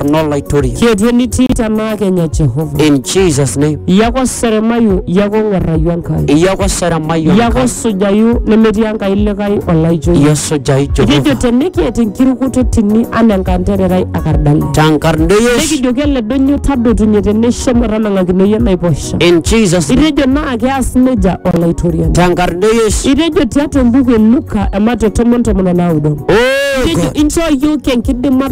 kuno laitoria. Kietu enitii tenaa kenya Jehova. In Jesus name. Iyako seremayu, iyako ng'uarrayu Enkai. Iyako seremayu Iyako Enkai. sujayu nemetii Enkai likae olaijo iyie. Iyasujayu Etejo Jehova. tenikiet enkirukoto tini anaa enkantererai akardale. Tenkarna e Yesu. Nikijoki ele doinyio tadotunye teneisho metanang'akino iyie enaiposha. In Jesus name. Itejo naa keas nejia olaitoriani. Tenkarna e Yesu. Itejo tiatua embuku e Luka ematua tomon tomon o naudo. Oh Itejo God. inchoo iyiook enkidimata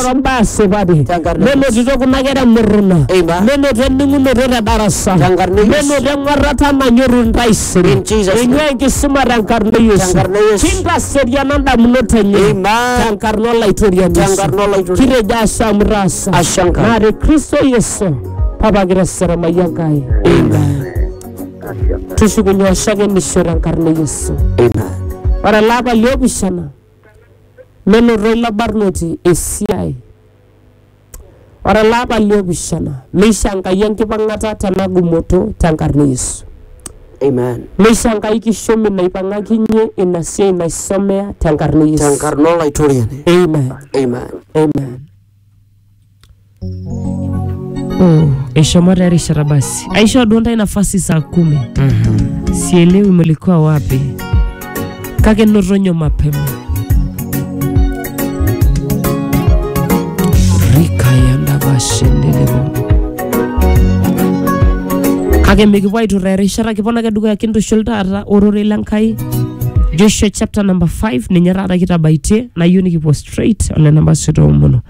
enoto mbaa supati Tenkarna e Yesu. menotito kuna kera emurruna Amen. menoto ening'unoto te darasa Tenkarna e Yesu. menoto eng'uarrata nanyorru ntaisere In Jesus' name. eing'ua enkisuma tenkarna e Yesu Tenkarna e Yesu. kintaseriana ndamunot enye Amen. tenkarna olaitoriani Yesu. Tenkarna olaitoriani. kitejo ashe amu itaasa Ashe Enkai. naa te kristo yesu papa kiteseremayi enkai tushukunye oshakenisho tenkarna e yesu Amen. ore elapa liopishana Menoto ilo barnoti esiai. Ore ele apa le opishana, meisho Enkai enkipang'ata te ena gumoto te nkarna e Yesu. Amen. Meisho Enkai kishomi naipang'akinye ina siai naisomea te nkarna e Yesu. Tenkarna Olaitoriani. Amen. Amen. Amen. Oh, eshomo taa erishata basi aishoo duo ntae nafasi saa kumi sielewi mlikuwa wapi kake notonyo mapema rikayanda bashendelebo kake mikipuo aituraa erishata kipon ake dukuya kintushul taata ororei le Nkai Joshua chapter number 5 ninye taata kitabaitie nayieu nikipuo straight ole namba sita omono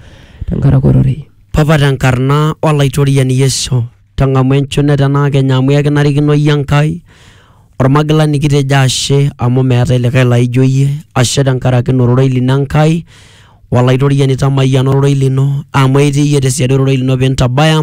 tenkaraki ororei. Papa te nkarna o Laitoriani Yesu, tang'amu enchune tena kenya amu ekinarikino iyie Enkai, Olmagilani kitejo ashe amu meetae likae laijo iyie, ashe tenkaraki ina ororei lino Enkai, Olaitoriani tamayiana ororei lino amu etii iyie te siadi ororei lino pee intabaya,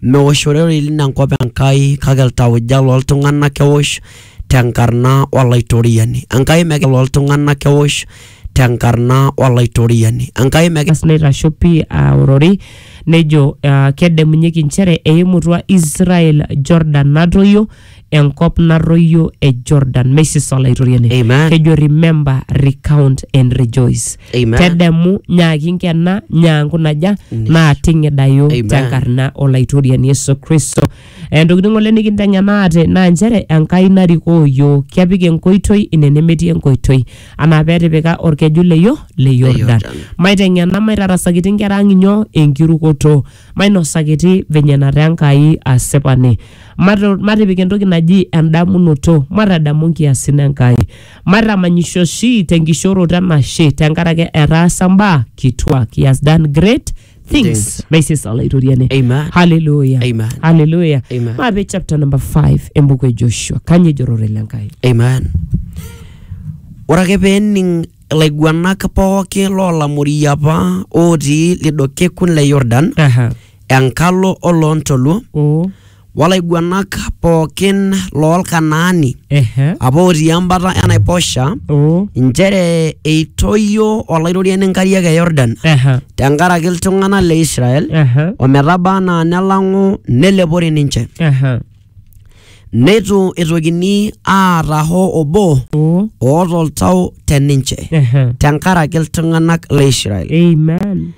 meosh ororei lino enkop Enkai kake iltauja loo ltung'ana eosh tenkarna o Laitoriani. Enkai megira iltung'ana eosh. tenkarna Olaitoriani Enkai mekira. Aas neitasho pii aa ororei, nejo aa kedamunyeki inchere eimutua Israel Jordan natoyio, enkop narruoyio e Jordan. Meisisa Olaitoriani. Amen. Kejo remember, recount and rejoice. Amen. Tedemu, nyaaki inkena, nyaanku naja, naa ting'idayu Amen. tenkarna Olaitoriani Yesu Kristo. Eh, ntokitin ng'ole nikinteng'enaate naa nchere Enkai narikoo iyiook kepik enkoitoi ine nemetii enkoitoi anaa petipika orkeju le yo le Yordan Yordan. maiteng'ena maitarasakiti nkera ang inyoo enkirukoto mainosakiti venye nataa Enkai asipani Mato- matipik entoki naji endamunoto matadamu nkiasin Enkai matamanyisho oshi tenkishoroto enashe tenkaraki etaasa mbaa kituak he has done great things Things. maisesa olaitoriani Amen. haleluya Amen. haleluya Amen. maape chapter number 5 embuku e joshua kanye ejorore le nkai Amen. Ore ake pee ening ilaiguanak pooki loolamori apa ootii lido kekun le Yordan Aha. enkalo oloontoluo o olaiguanak pookin loolkanaani Ehe. apa otii embata enaiposha Oh. inchere eitoyio olairoriani inkariak e yordan Ehe. tenkaraki iltung'anak le israel Ehe. ometaba anaa nelang'u nelepori ninche Ehe. neitu eitokini aata hoo obo Oh. oota oltau te ninche Ehe. tenkaraki iltung'anak le israel Amen.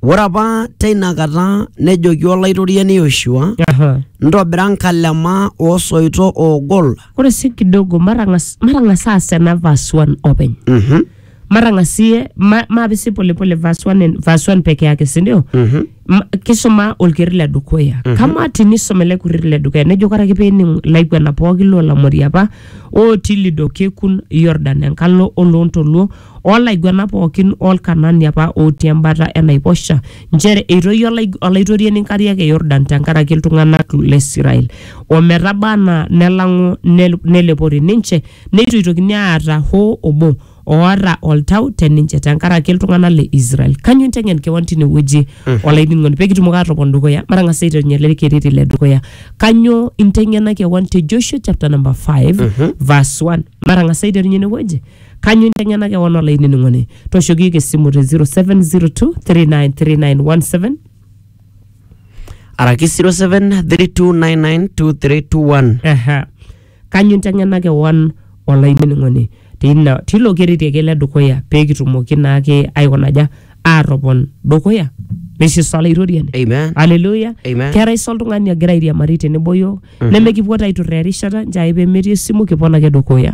Ore apa teina kata nejoki Olaitoriani Yoshua, Aha. Ntobira nkalema oo soito oogol. Ore sii kidogo matang'as matang'as aas ena verse 1 openy. Mhm, Matang'asie ma, maapisi polepole verse 1 en- verse 1 peke yake, si ndio? mhm, Ma- kisuma olkerri le dukuya kama tinisum ele kerri le dukuya nejo ore ake pening ilaiguana pooki loolamori apa ootii lido kekun Yordan enkalo oloontoluo oo laiguanak pooki oo Lkanani apa ootii embata e naiposha, nchere eitoyio olaig- Olaitoriani nkariak e Yordan tenkaraki iltung'anak le Israel, o metaba anaa nelang'u nel- nelepori ninche, neitu eitokini aata hoo obo oota oltau te ninche tenkaraki iltung'anak le Israel. Kanyoo inteng'en kewan tine wueji olainining'oni pee kitumoki aatopon dukuya? Matang'asa aiterunye ele kereri le dukuya. Kanyoo inteng'ena kewan te Joshua chapter number 5 verse 1? Matang'asa aiterunye ine wueji. Kanyo inteng'ena kewan olainining'oni? Tooshoki iyiook esimu te 0702393917 araki 0732992321 Aha. Kanyo inteng'ena kewan olainining'oni? Teina tilo kereti ake le dukuya pee kitumoki naake aikonaja aatopon dukuya. Meshe sa olaitoriani? amen Haleluya. Amen. Keetai sa oltung'ani ogira airiamari tenebo iyiook? Nemekipuo taa aiturraa erishata, nchoo ake pee metii esimu kipon ake dukuya.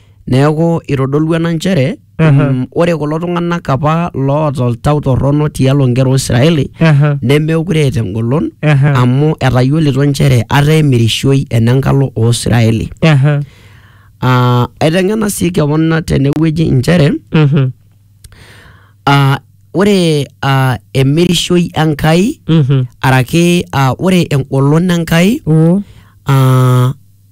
Neaku eitodolua ena nchere Aha. mm, ore kulo tung'anak apa loota oltau torrono tialo nkera o Israeli Aha. nemeekure eeta engolon Aha. amu etayiolito nchere ata emirishoi enenkalo o Israeli. Aha. Ah, Aiteng'ena sii kewon tenewueji nchere Mhm. ah, ore ah, emirishoi Enkai Mhm. araki ah, ore engolon Enkai Oo. ah,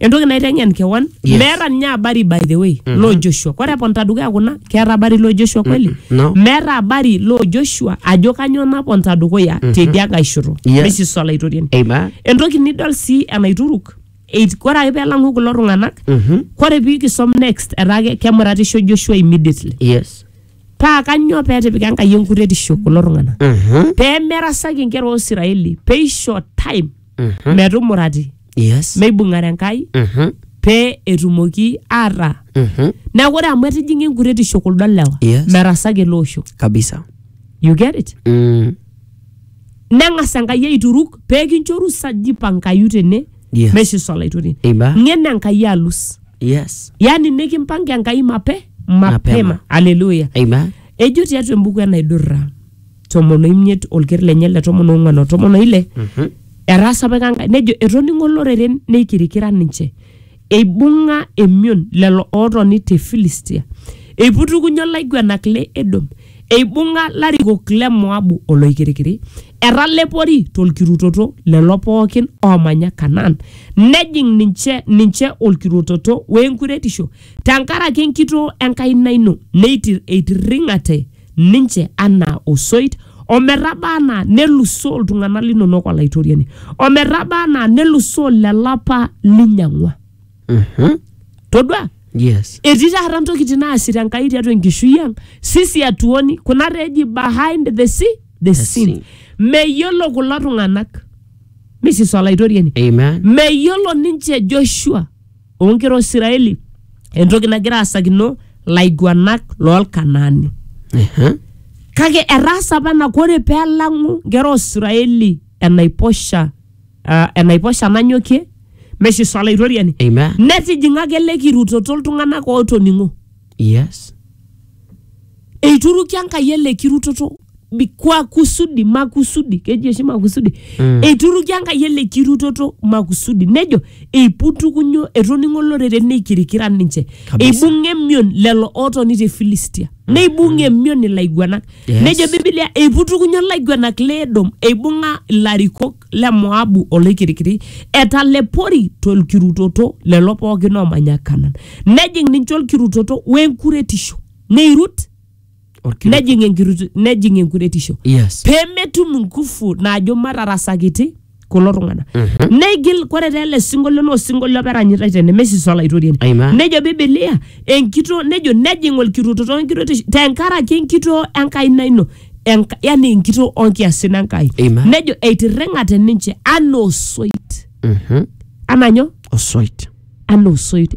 entoki naiteng'en kewan Yes. meeta ninye habari by the way loo joshua kore eponta dukuya kuna keeta habari loo joshua kweli Mm, no. meeta habari loo joshua ajo kanyoo naponta dukuya tedia nkae shoto Yes. mesisi olaitoriani Amen. entoki nidol sii enaituruk eit- kore ake pelang'u kulo tung'anak Mhm. kore pikisom next etaa ke- kemuratisho joshua immediately Yes. paa kanyoo petipika enkai enkuretisho kulo tung'anak Mhm. pemerasaki inkera o israeli peisho time Mhm. metumurati Yes. meibung'are enkai Mhm. pee etumoki aata Mhm. neeku ore amu etijing'a enkuretisho kuldo lewa Yes. merasaki ele osho Kabisa. you get it Mm. neng'as enkai aituruk pee kinchoru saji pankayu tene Yes. meshiso olaitoriani Iba. ng'ena enkai alus Yes. yani nikimpanga enkai mape mapema Mapema. aleluya Amen. ejo tiatua embuku enaidurra tomon oimiet olker lenye le tomon ong'uan o tomon oile Mhm. etaasa apa Enkai nejo etoning'o loreren neikirikira ninche eibung'a emion lelo ootoni te Filistia eiputukunye olaiguanak le Edom eibung'a larikok le Moabu oloikirikiri etalepori tolkirutoto lelo pookin oomanya Kanaan nejing ninche ninche olkirutoto weenkuretisho tenkaraki enkitoo enkaina ino neitir eitirring'ate ninche anaa osoit ometaba anaa nelusoo iltung'anak linonok olaitoriani ometaba anaa nelusoo lelo apa linyang'ua Mhm. todua Yes. etii taata ntokitin naasita enkai tiatua enkishui ang sisi atuoni kuna taa eji behind the sea the scene scene. meyiolo kulo tung'anak misis olaitoriani Amen. meyiolo ninche joshua oonkera o Isiraeli entoki nagira aasakino laiguanak loolkanaani. Ehe. Kake etaasa apa ena kore pee elang'u nkera o Isiraeli enaiposha ah, enaiposha nanyokie meshiso olaitoriani Amen. netijing'aka ele kirutoto iltung'anak ootoning'o. Yes. eituruki Enkai ele kirutoto bi- kwa kusudi makusudi keji oshi makusudi Mm. eituruki Enkai ele kirutoto makusudi nejo eiputukunyo etoning'o olorere neikirikira ninche Kabisa. eibung'a emion lelo ootoni te Filistia neibung'a emion ilaiguanak Yes. nejo Biblia eiputukunyo ilaiguanak le Edom eibung'a ilarikok le Moabu oloikirikiri etalepori tolkirutoto lelo pookin oomanya Kanan nejing ninche olkirutoto wenkuretisho neirut Orkiruk. nejing enkirutu nejing enkuretisho Yes. pemetum nguvu naajo matarasakiti kulo tung'anak Mhm. neigil kore taa ele sinkolio naa osinkolio apa eranyitai tene mesis olaitoriani Amen. nejo bibilia enkitoo nejo nejing olkiruto tonkirotish tenkaraki enkitoo enkaina ino Enka, yani enkitoo onkiasin enkai Amen. nejo eitirring'ate ninche anaa osoit Mhm. anaa nyoo osoit anaa osoit